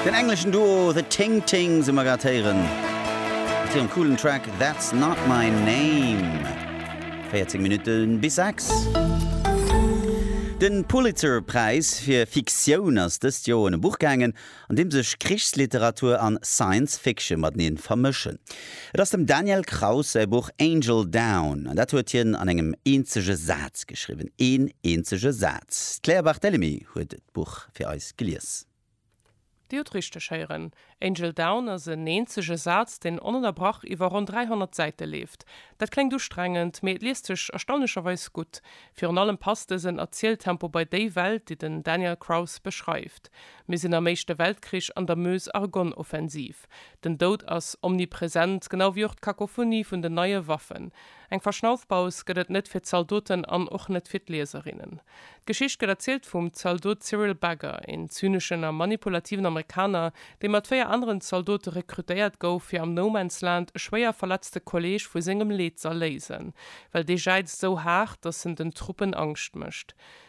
Den engleschen Duo The Ting Tings hu mer grad héieren mat hirem coolen Track That's Not My Name. 14 Minutte bis 6. De Pulitzer-Präis fir Fiktioun ass dëst Joer un e Buch gaangen, an deem sech Krichsliteratur an Science Fiction matenee vermëschen. Et ass dem Daniel Kraus säi Buch Angel Down, an dat huet hien an engem eenzege Saz geschriwwen. Een eenzege Saz. D'Claire Barthelemy huet d'Buch fir eis gelies. Dir hutt richteg héieren, Angel Down ass en eenzege Saz, deen onënnerbrach iwwer ronn 300 Säite leeft. Dat kléngt ustrengend, mee et liest sech erstaunlecherweis gutt. Virun allem passt dësen Erzieltempo bei déi Welt, déi den Daniel Kraus beschreift. Mir sinn am Éischte Weltkrich an der Meuse-Argonne-Offensiv. Prinzip, den Doud ass omnipresent, genau wéi och d'Kakophonie vun den neie Waffen. Eng Verschnaufpaus gëtt et net fir d'Zaldoten an och net fir d'Lieserinnen. D'Geschicht gëtt erzielt vum Zaldot Cyril Bagger, een zyneschen a manipulativen Amerikaner, dee mat véier aneren Zaldote rekrutéiert gouf, fir am No-Man's-Land e schwéier verletzte Kolleeg vu sengem Leed z'erléisen, well dee jäizt esou haart, datt en den Truppen Angscht mécht.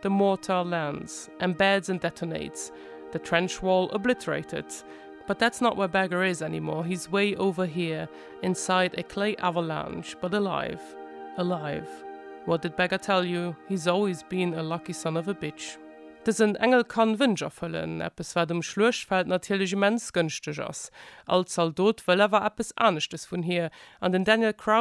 The mortar lands, embeds and detonates, the trench wall obliterated, but that's not where Bagger is anymore, he's way over here inside a clay avalanche, but alive, alive, what did Bagger tell you, he's always been a lucky son of a bitch. Dësen Engel kann Wënsch erfëllen, eppes wat um Schluechtfeld natierlech immens gënschteg ass. All Zaldot wëll awer eppes aneschtes vun hir, an den Daniel Craus,